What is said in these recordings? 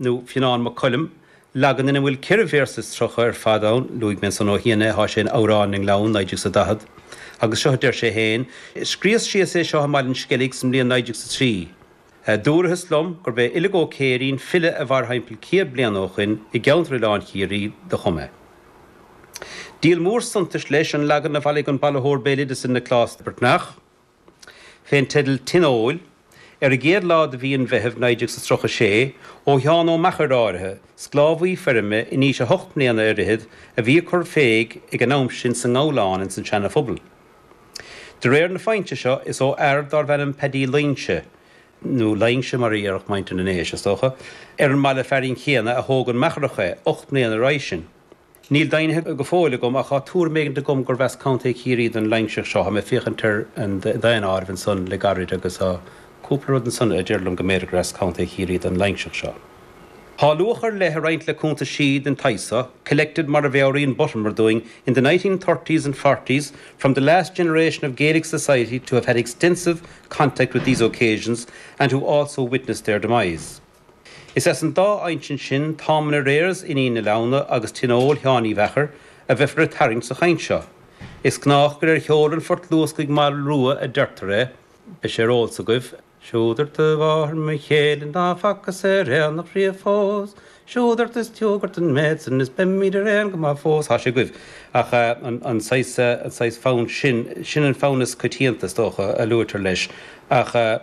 nó Fionán Mac Coluim, leagan ina bhfuil ceithre véarsa is tríocha ar fad ann, luaigh mé ansan ó chian é, tá sé in Amhráin na nGleann, 1940, agus seo a deir sé féin, 'Scríos síos é seo i mBaile an Sceilg san mbliain 1903. Dúrathas liom gurb é Uilliog Ó Céirín, file a mhair thimpeall céad bliain ó shoin i gceanntar Oileán Chiarraí, do chum é. Díol mór suntais, leis, an leagan a bhailigh an bailitheoir béaloideasa Nioclás Breatnach, fén dteideal 'Tionóil', ar an gcéad lá de mhí an Mheithimh 1936, ó Sheán Ó Meachair áirithe, sclábhaí feirme in aois a hocht mbliana ar fhichead, a bhí ag cur féig ag an am sin sa nGabhlán ins an tSeana Phobal. De réir na foinse seo, is ó fhear dárbh ainm Peaidí Luíngse, nó Laingse mar a dhéarfadh muintir na nDéise, is dócha, ar an mbaile fearainn céanna a thóg an Meacharach é, ocht mbliana roimhe sin. Níl deimhnithe go fóill agam, ach tá tuairim éigin agam gurb as Contae Chiarraí don Loingseach seo. Tá mé ag féachaint ar an daonáireamh ansan le gairid agus tá cúpla rud ansan a deir liom go mb'fhéidir gur as Contae Chiarraí don Loingseach seo. Tá luach ar leith ag roinnt le cuntaisí den tsaghas seo, 'collected' mar a mheabhraíonn Buttimer dúinn, 'in the nineteen thirties and forties from the last generation of Gaelic society to have had extensive contact with these occasions and who also witnessed their demise'. Is as an dá insint sin, Táim in Arrears Fhinghin na Leamhna agus Tionól Sheáin Uí Mheachair, a bheifear ag tarraingt sa chaint seo. Is gnách gur ar sheol an phoirt luascaigh Mall Rua a deirtear é, Beidh sé ar eolas agaibh, Siúd ort a mháthair mo chéile ná facas ar aonach riamh fós, Siúd ort is diúg ort an méid san is beimíd ar aon go maith fós. Tá sé agaibh. Ach an saghas, an saghas fonn sin, sin an fonn is coitianta, is dócha, a luaitear leis. Ach.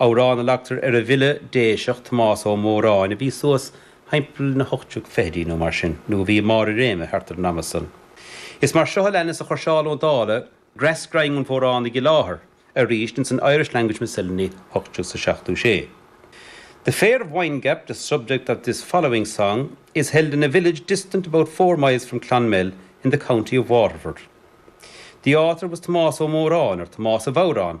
amhrán a leagtar ar an bhfile Déiseach, Tomás Ó Móráin, a bhí suas thimpeall na hocht déag fichidí nó mar sin, nó a bhí i mbarr a réime thart ar an am san. Is mar seo a leanas a chuir Seán Ó Dálaigh greas grinn an Mhóránaigh i láthair arís ins an Irish Language Miscellany, 1876. The fair of Windgap, the subject of this following song, is held in a village distant about four miles from Clonmel in the county of Waterford. The author was Tomás Ó Móráin, or Tomás a' Bhodhráin,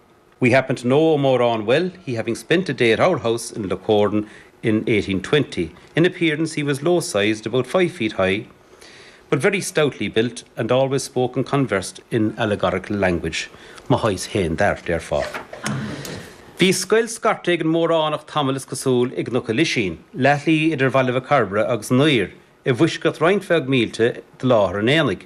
We happen to know Moran well, he having spent a day at our house in Lickoran in 1820. In appearance he was low-sized, about five feet high, but very stoutly built and always spoke and conversed in allegorical language. Mo shaghas féin dar, therefore. Bhí scoil scairte ag an Móránach tamall is cosúil i gCnoc an Lisín, leathshlí idir Bhaile Mhac Cairbre agus an Uidhir, i bhfoisceacht roinnt bheag mílte de láthair an aonaigh.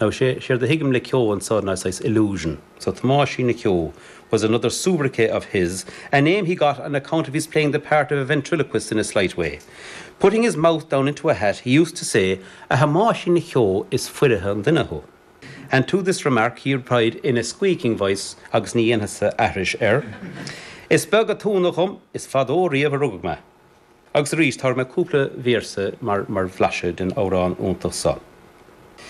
Now, séard a thuigim le ceo anseo ná saghas illusion. So, Tomáisín na Ceo was another soubriquet of his, a name he got on account of his playing the part of a ventriloquist in a slight way. Putting his mouth down into a hat, he used to say, A Thomáisín na Ceo, is foirfe an duine thú. And to this remark he replied in a squeaking voice, agus ní dhéanfadsa aithris air, Is beag a' t-ionadh dhom, is fadó riamh a rugadh mé. Agus arís, tabharfaidh mé cúpla véarsa mar bhlaiseadh den amhrán iontach so.